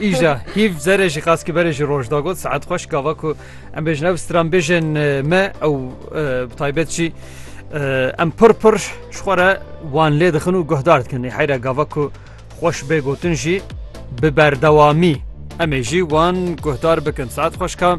Îja hîv zerê jî qas ki berê jî roj da got saet xweş gava ku em bêjin ev stran bêjin me ew bi taybet jî em pir pir ji xwe re wan lê dixin û guhdar dikin nê heyre gava ku xweş bê gotin jî bi berdewamî em ê jî wan guhdar bikin saet xweşka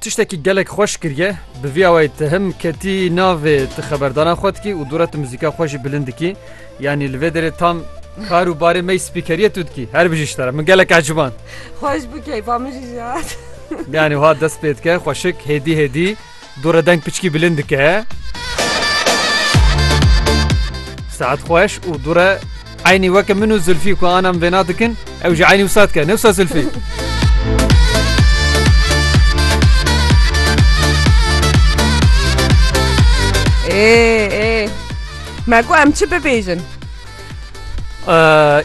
Tiştekî gelek xweş kiriye bi vî awayî te him ketî navê ti xeberdana xwe dikî û dûra ti muzîka xwe jî bilind dikî yanî li vê derê tam kar û barê me spîkeriye tu dikî her bijî ji te re min gelek eciban Xweş bû keyfa min jî jat. yanî ha dest pê dike xweşik hêdî hêdî Dore deng piçkî bilind dike. Saet xweş û dore eynî weke min û Zilfî ku anam vêna dikin ew jî eynî wisa dike. Newsa Zilfî. Ê ê me ku em çi bibêjin.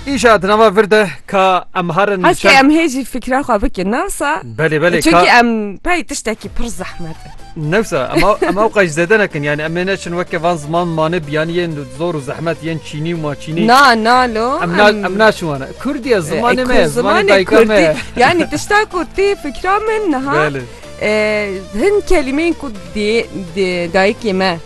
Îşa di nava vir de ka em harin Heskê em hê jî fikra xwe bikin nasa Belê belê Çunkî em pey tiştekî pir zehmet e Newsa em ew qej zêde nekin yani em ê neçin weke van ziman manê biyanî yên zor û zehmet yên çînî û maçînî Na nalo em naçin wana Kurdiye zimanê me zimanê dayika me Yani tişta ku tê fikra min niha hin kelimeyên ku dê dayikê me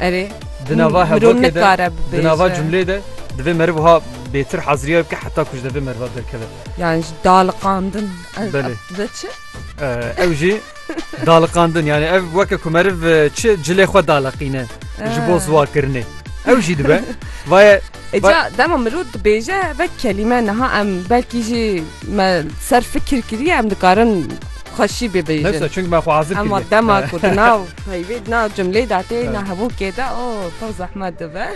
Erê Di nava mirov hevokê de, nikare di nava bibêje. cumlê de divê meriv wiha bêtir heziriyayê bike heta ku ji devê meriva derkeve. Yani ji daliqandin. Ez- Belê. ev Dibe çi? Eh, Ew jî daliqandin yani ev weke ku meriv eh, çi cilê xwe daliqîne ji bo ziwakirinê. Ew jî dibe. Vaye E Ba- ca dema mirov dibêje ve kelîme niha em belkî jî me ser fikir kiriye em dikarin xweşî bibêjin. nefsa çünkü me xwe azir Ama kiriye. dema ku di nav Peyvê di nav cumleyê de tê, na hevokê de o pir zehmet dibe.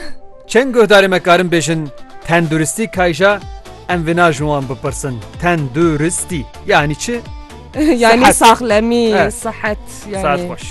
Çend guhdarê me karin bêjin tenduristî kayja em vina ji wan bipirsin tenduristî yanî çi? Yanî saxlemî, sihet. Saet xweş.